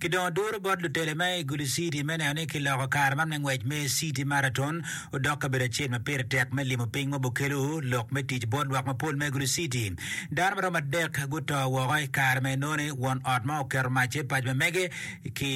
ki dong oduro bot lutele ma i gudi citi me neno ni kiloko kare man me ngwec me Citi Maraton odok kabedo acel ma pire tek me limo piny ma bukelo lok me tic bot lwak mapol me gudi citi. Dano maromo adek guto woko i kare ma enoni won ot ma oketo mac i pac ma mege ki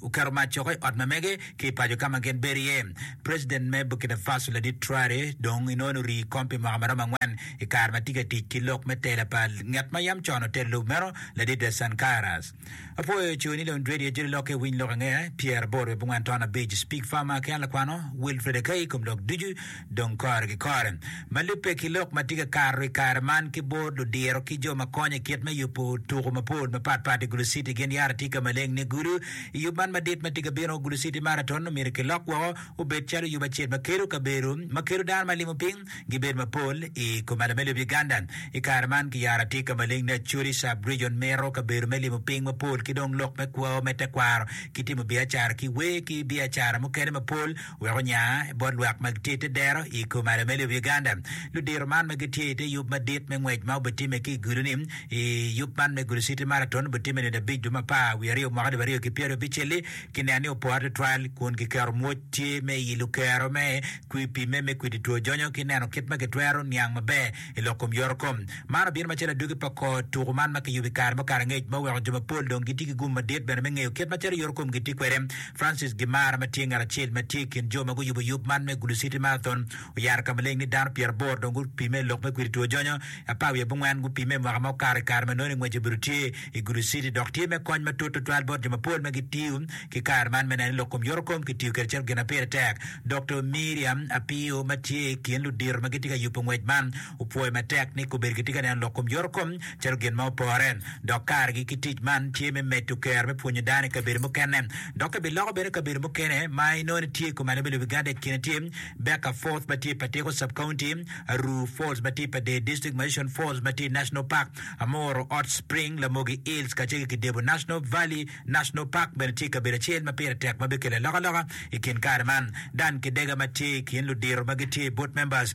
oketo mac coko i ot ma mege ki i paco ka ma gin bedo iye. President me Burkina Faso ladit Traore dong inoni orii i kom pi mwaka ma romo angwen i kare ma tye ka tic ki lok me tela pa ngat ma yam con otelo lobo meno, ladit de Sankara's. Apwoyo co ni lon Radio Joli Lokke iwiny lok angea, pyeraboro wiye abongwen taon abic, Speak Farmer ki an lakwano Wilfred Akai i kom lok ducu. Dong kore ki kore, ma lubbe ki lok ma tye ka kato i kare man ki bot ludiro ki jo ma konyo i kit me yubo tuko mapol mapat pat i Gulu City gin yara tye ka maleng ni Gulu. I yub man madit ma tye ka bino, Gulu City Marathon omyero kilok woko obed calo yub acel ma kelo kabedo ma kelo dano ma limo piny gibed mapol i kom ale me lobo Uganda. I kare man ki yara tye ka maleng ni Acholi Sub Region mito kabedo me limo piny mapol ki dong lok me kwo me tekwaro ki timo biacara ki wer ki biacara mukene mapol Wek onya bot lwak ma gitye i te dero i kom Arameli of Uganda, ludito man ma gitye i te yub madit me ngwec ma obitimme ki i gulu-ni, i yub man me Gulu City Marathon, obitimme nino abic dwe me apar wiye aryo mwaka alip aryo ki pyeraryo abicelli, kineno ni opore tutwal kun kiketo mwoc tye me i lukero me kwi pimme me kwidi two jonyo ki neno kit ma kitwero niang maber I lok kom yorokom, man obino macalo adwogi pa kor tuku man ma kiyubo i kare me okato angec ma oweko jo mapol dong gitye ki gum madit bene me ngeyo kit macalo yorokom gitye kwede. Francis Gimara ma tye ngat acel ma tye i kin jo ma guyubo yub man me Gulu City Marathon oyaro ka maleng ni dano pyeraboro dong gupime i lok me kwidi two jonyo, apar wiye abongwen gupime i mwaka ma okato i kare ma nongo ni ngwec obedo tye i Gulu City dok tye me kony matut tutwal bot jo mapol ma gitiyo ki kare man me neno ni lok kom yoto kom kitiyo kwede calo gin ma pire tek. Doktor Miriam Apio ma tye i kin ludito ma gitye ka yubo ngwec man opwoyo matek ni kobedo kitye ka neno lok kom yoto kom calo gin ma opore dok karegi ki tic man tye me medo kero me pwonyo dano i kabedo mukene dok kibiloko bene kabedo mukene ma inongo ni tye i kom alebbe lobo Uganda i kine tye Becca Forth ma tye i Patiko Sub-County, Aruu Falls ma tye i Pader District, ma Ocean Falls ma tye i National Park. Amoro Hot Spring, Lamogi Hills kacel ki Kidebo National Valley National Park bene tye kabedo acel ma pire tek ma bikelo alokaloka i kin kare man. Dan Kidega ma tye i kin ludiro ma gitye i Board Members